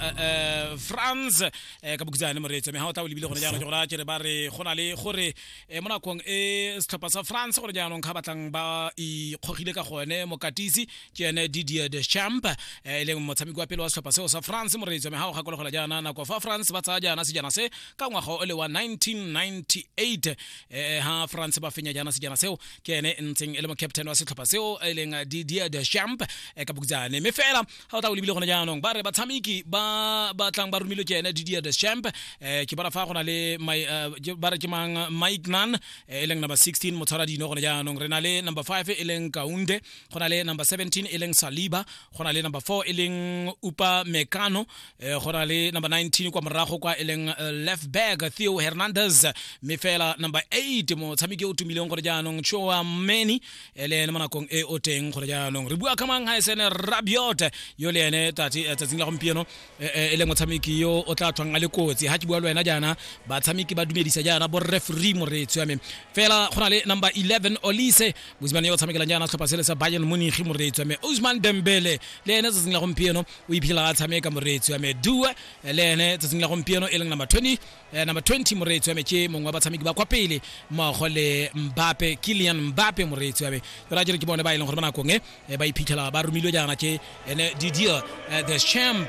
eh, eh, franz eh, ka bokitsana le moreetsa me ga o tla o lebile gone jaanong ke gore a kere ba re go na le gore eh, mo nakong e setlhopha sa france gore jaanong ga batlang ba ikgogile ka gone mokatisi ke ene didier de champ eh, e leng motshameki wa pele wa setlhopha seo sa france moreetsa me ga o gakologola jaana nako fa france ba tsaya jaana sejana se ka ngwaga o le wa 1998 eh, ha france ba fenya jaana sejana seo ke ene e ntseng e le mo captain wa setlhopha seo e leng eh, didier de champ eh, ka bokitsane me fela ga o tla o lebile gone jaanong ba re batshameki ba ba tlang ba romilwe ke ene didier de champ um ke bona fa go na le eh, ba re ke mang mike nan eh, e leng number 16 motshwara dino gone jaanong re na le number 5 e leng kaunde go na le number 17 e leng saliba go na le number 4 e leng upa mekano eh, go na le number 19 kwa morago kwa e leng left back theo hernandez mme fela number 8 motshameki o tumileng gore jaanong choa many e le ene mo nakong e o teng gore jaanong re bua ka mang gaesene rabiot yo le ene eh, tsatsing la gompieno eh, eh, e leng motshameki yo o tla tlhwang a le kotsi ga ke bua le wena jaana batshameki ba dumedisa jaana bo referee moreetsi wa me fela go na le number 11 olise mosimane yo o tshamekelang jaana setlhopha sele sa bayern monigi moreetsi wa me usman dembele le ene tsatsing la gompieno o iphitlhela a tshameka moreetsi wa me due le ene tsatsing la gompieno e leng number 20 Eh, number 20 moreetsi wa me ke mongwe wa batshameki ba kwa pele mmogo le mbape kilian mbape moreetsi wa me ke ra jere ke bone ba e leng gore ba nakong e eh, ba iphitlhela ba romilwe jaana ke ene didier eh, the champ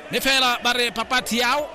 mme fela ba re papa tiao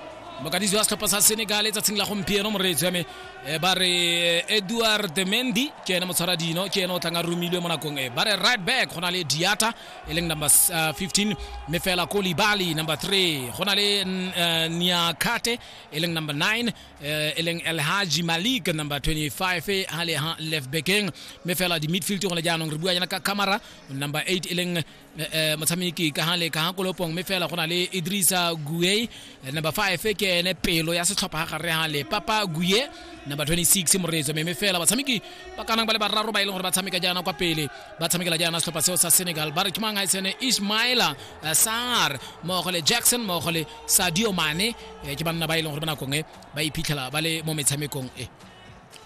mokadisi wa setlhopha sa senegal tsatsing la gompieno moreetsi wa me eh, ba re eh, edward mendi ke ene motshwara dino ke ene o tlang a romilwe mo nakong e ba re right back go na le diata e leng number uh, 15 mme fela ko libali number 3 go na le uh, niakate e leng number 9 uh, e leng elhaji malik number 25 ha le ha left backeng mme fela di midfield gone jaanong re bua yana ka camera number 8 e leng uh, uh, motshameki ka ha le ka ha kolopong mme fela go na le idrisa guei number 5 ke ene pelo ya setlhopha ga gare ga le papa guye number 26 moreetso meme fela batshameki ba kanang ba le bararo ba e leng gore ba tshameka jaana kwa pele ba tshamekela jaana setlhopha seo sa senegal ba re ke mang ga itsene ismaila eh, sar mmogo le jackson mmogo le sadio mane eh, ke banna ba e leng gore ba nakong e ba iphitlhela ba le mo metshamekong e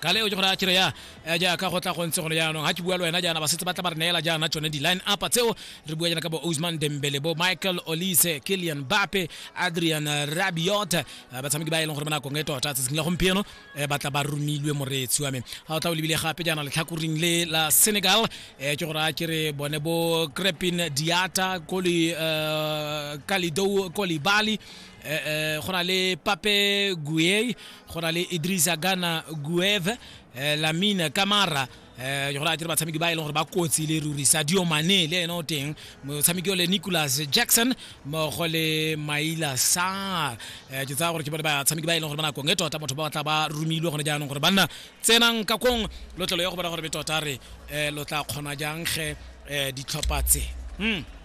ka leo ke gore a kere ya eh, jaaka go tla go ntse gone jaanong ga ke bua le wena jaana ba setse ba tla ba re neela jaana tsone di-line up tseo re bua jaana ka bo osman dembele bo michael olise killian bape adrian rabiot eh, batshameki ba e leng gore ba nakong e tota tsatsing la gompieno eh, ba tla ba romilwe moreetsi wa me ga o tla o lebile gape jaana letlhakoring le la senegal eh, ke gore a kere bone bo crepin diata koli eh, kalidou kolibali eh, eh, go na le pape guey go na le idrisa gana guev eh, lamine kamara eh go ra dire batshameki ba e leng gore ba kotsi le ruri sadio mane le ene o teng motshameki o le nicholas jackson mmogo le maila sar eh ke tsaya gore ke bone batshameki ba e leng gore ba nakong e tota motho ba batla ba romilwe gone jaanong gore banna tsenang ka kong lotlelo ya go bona gore be tota re eh lo tla kgona jang ge eh ditlhopha tse hmm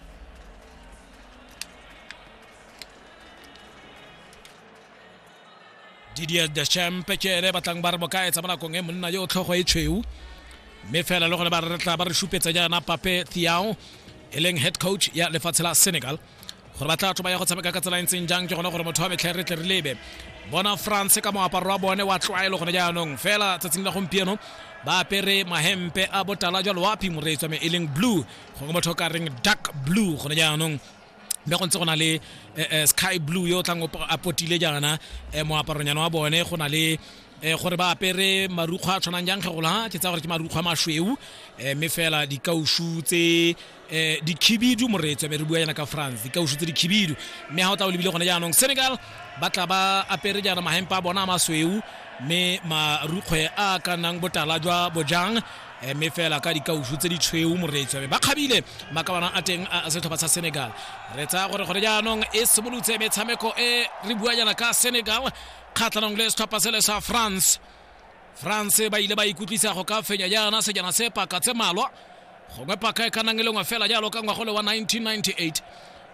didier the champ ke ene batlang ba re bokaetsa mo nakong e monna yo o tlhogo e tshweu mme fela le gone ba re tla ba re supetsa jaana pape thiao e leng head coach ya lefatshe la senegal gore ba tla tlo ba ya go tshameka ka tsela e ntseng jang ke gone gore motho wa metlha re tle re lebe bona france ka moaparo wa bone wa tlwaelo gone jaanong fela tsatsing la gompieno ba apere mahempe a botala jalo wa phimoreetswa me e leng blue gongwe motho o ka reng dark blue gone jaanong mme go ntse go na le eh, eh, sky blue yo o tlang a potile jaana eh, moaparonyana wa bone go na le gore ba apere marukgwa a tshwanang jang kgegola ke tsa gore ke marukgwa masweu mme fela dikausu tse dikhibidu moretswe be re bua yana ka france dikausu tse dikhibidu mme ga o tla o lebile gone jaanong senegal ba tla ba apere jaana mahempa a bona a masweu mme marukgwe a ka nnang botala jwa bojang Eh, mme fela ka dikausu tse di tshweu moreetsi ba kgabile makabanang a teng a setlhopha sa senegal re tsaya gore gore jaanong e simolotse metshameko e re bua jana ka senegal kgatlhanong le setlhopha sele sa france france ba ile ba ikutlwisa go ka fenya jaana sejana se paka tse malwa gongwe paka e ka nang e lengwe fela jalo ka ngwago le wa 1998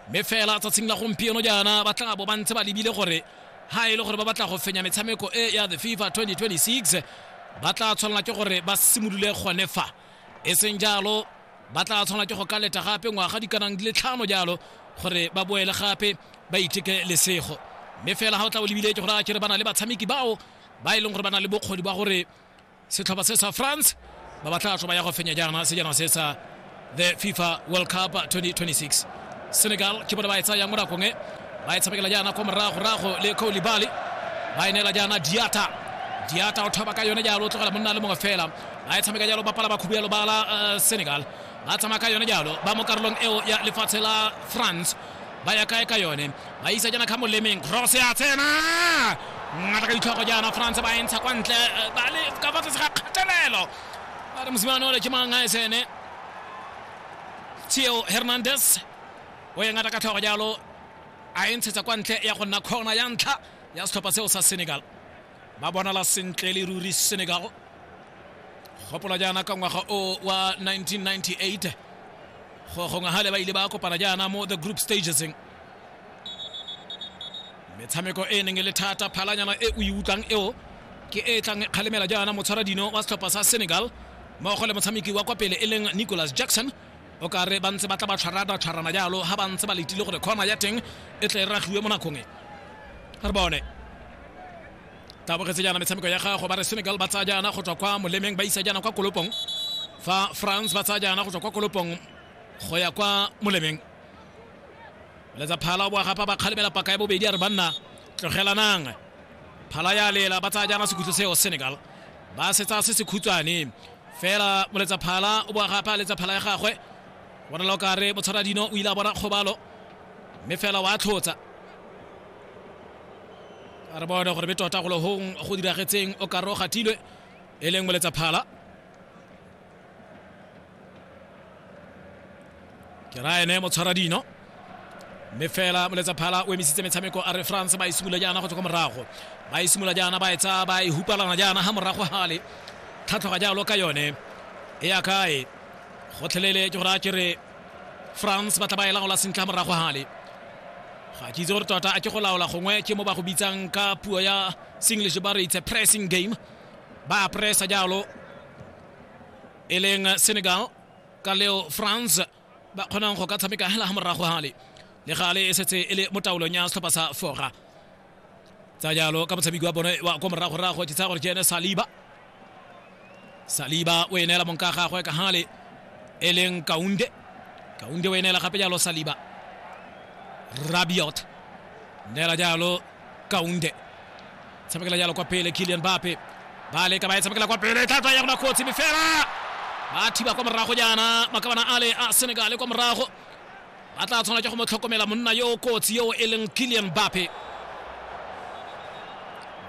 mme fela tsatsing la gompieno jaana ba tla bo ba ntse ba lebile gore ha e le gore ba batla go fenya metshameko e ya the fifa 2026 ba tla tshwanela ke gore ba simolole gone fa e seng jalo ba tla tshwanela ke go ka leta gape ngwaga di kanang di le tlhano jalo gore ba boele gape ba iteke lesego mme fela ga o tla o lebile ke gore a kere ba na le batshameki bao ba e leng gore ba na le bokgoni ba gore setlhopha se sa france ba batla tlo ba ya go fenya jaana sejana se sa the fifa world cup 2026 senegal ke bone ba e tsayang mo nakong e ba e tshamekela jaana ko moragorago le kolibali ba e neela jaana diata diata o thoba ka yone jalo o tlogela monna le mongwe fela ba e tshameka jalo bapala ba khubelo ba la eh, senegal ba tsamaya ka yone jalo ba mo karolong eo ya lefatshe la france ba ya kae ka yone ba isa jaana ka molemeng cross ya tsena ngata ka ditlhogo jaana france ba entsha kwa ntle eh, ba le ka fa tlase ga kgatelelo ba re mosimane ole ke mang a esene theo hernandez o ye ngata ka tlhogo jalo a e ntshetsa kwa ntle ya go nna kgona ya ntlha ya setlhopha seo sa senegal ba bonala sentle le ruri senegal gopola jaana ka ngwaga o wa 1998 go gongwe gale ba ile ba kopana jaana mo the group stages metshameko e neng e le thata phalanyana e o e utlwang eo ke e tlang kgalemela jaana motshwara dino wa setlhopha sa senegal mmogo le motshameki wa kwa pele e leng nicholas jackson o ka re ba ntse ba tla ba tshwara ba tshwarana jalo ga ba ntse ba letile gore kgona ya teng e tle e ragiwe mo nakong e re bone tabogetse jaana metshameko ya gago ba re senegal ba tsaya jaana go tswa kwa molemeng ba isa jaana kwa kolopong fa france ba tsaya jaana go tswa kwa kolopong go ya kwa molemeng letsa phala o boa gapa ba kgalemela paka ya bobedi a re banna tlogelanang phala ya lela ba tsaya jaana sekhutlo seo senegal ba setsa se se khutshwane Fela Moletsaphala o boa gape a letsa phala ya gagwe. Bonala o ka re Motshwaradino o ile a bona kgobalo mme fela wa tlhotsa. A re bone gore be tota golo hong go diragetseng o ka re o gatilwe e leng Moletsaphala. ke ra ene motshwara dino mme fela moletsa phala o emisitse metshameko a re france ba e simolola jaana go tswa kwa morago ba e simolola jaana ba e tsaya ba e hupalana jaana ga morago gale tlhatlhoga jalo ka yone e ya kae gotlhelele ke gore a ke re france ba tla ba e laola sentle ga morago gale ga ke itse gore tota a ke go laola gongwe ke mo ba go bitsang ka puo ya senglish ba re itse pressing game ba pressa jalo e leng senegal ka leo france ba kgonang go ka tshameka hela ga morago gale le gale e setse e le mo taolong ya setlhopha sa fora tsa jalo ka motshameki wa bone wa ko moragorago ke tsaya gore ke ene saliba saliba o e neela monka gagwe ka gale e leng kaunde kaunde o e neela gape jalo saliba rabiot neela jalo kaunde tshamekela jalo kwa pele kilian bape ba leka ba e tshamekela kwa pele thata ya gona kotsi mme fela ba thiba kwa morago jaana makabana ale a senegale kwa morago ba tla tshwana ke go mo tlhokomela monna yo o kotsi yo e leng kilian bape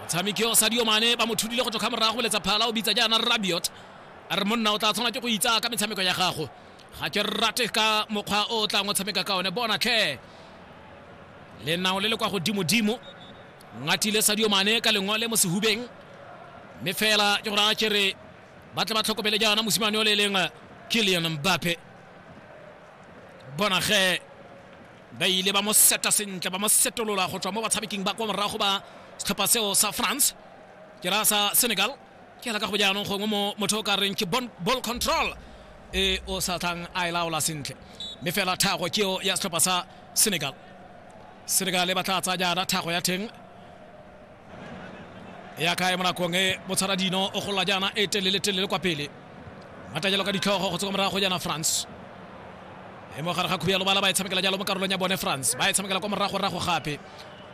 motshameki yo sadio mane ba mo thudile go tloga morago boletsa phala o bitsa jaana rabiot a re monna o tla tshwana ke go itsa ka metshameko ya gago ga ke rate ka mokgwa o o tlang o tshameka ka one bona tlhe lenao le le kwa godimodimo ngatile sadio mane ka lengole mo sehubeng mme fela ke gore a kere ba tle ba tlhokomele jaana mosimane o le leng killian mbape bona ge ba ile ba mo seta sentle ba mo setolola go tswa mo batshameking ba kwa morago ba setlhopha seo sa france ke raya sa senegal ke ala ka go jaanong gongwe mo motho o ka reng ke bon- ball control e o sa tlang a e laola sentle mme fela thago ke eo ya setlhopha sa senegal Senegale ba tla tsaya jaana thago ya theng ya kae mo nakong e botshara dino o golola jaana e telele telele kwa pele matajelo ka ditlhogo go tswa morago go jaana france e mo gare ga khubi ya lobala ba e tshamekela jalo mo karolong ya bone france ba e tshamekela kwa morago rago gape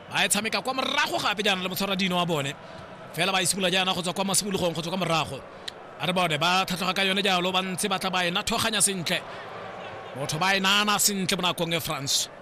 ba e tshameka kwa morago gape jaana le motshwara dino wa bone fela ba e simolola jaana go tswa kwa mosimologong go tswa kwa morago a re bone ba tlhatlhoga ka yone jalo ba ntse ba tla ba e nathoganya sentle motho ba e nana sentle mo nakong e france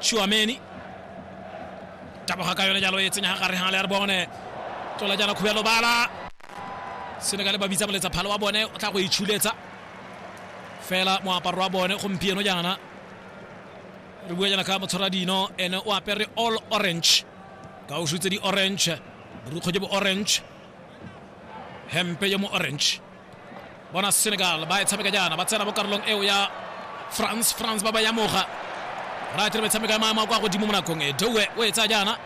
Tšhuameni taboga ka yone jalo e tsenya ga gare ga le ya re bone tlola jaana khubelo bala senegale ba bitsa moletsa phalo wa bone o tla go itshuletsa fela moaparo wa bone gompieno jaana re bua jaana ka motshwara dino ene o apere all orange ka o shutse di-orange borukgo jo bo orange hempe jo mo orange bona senegal ba e tshameka jaana ba tsena mo karolong eo ya france france ba ba yamoga ra tire metshameko ya maemo a kwa godimo mo nakong e dowe o e tsaya jaana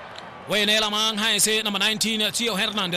o e neela mang ha e se number 19 theo hernandez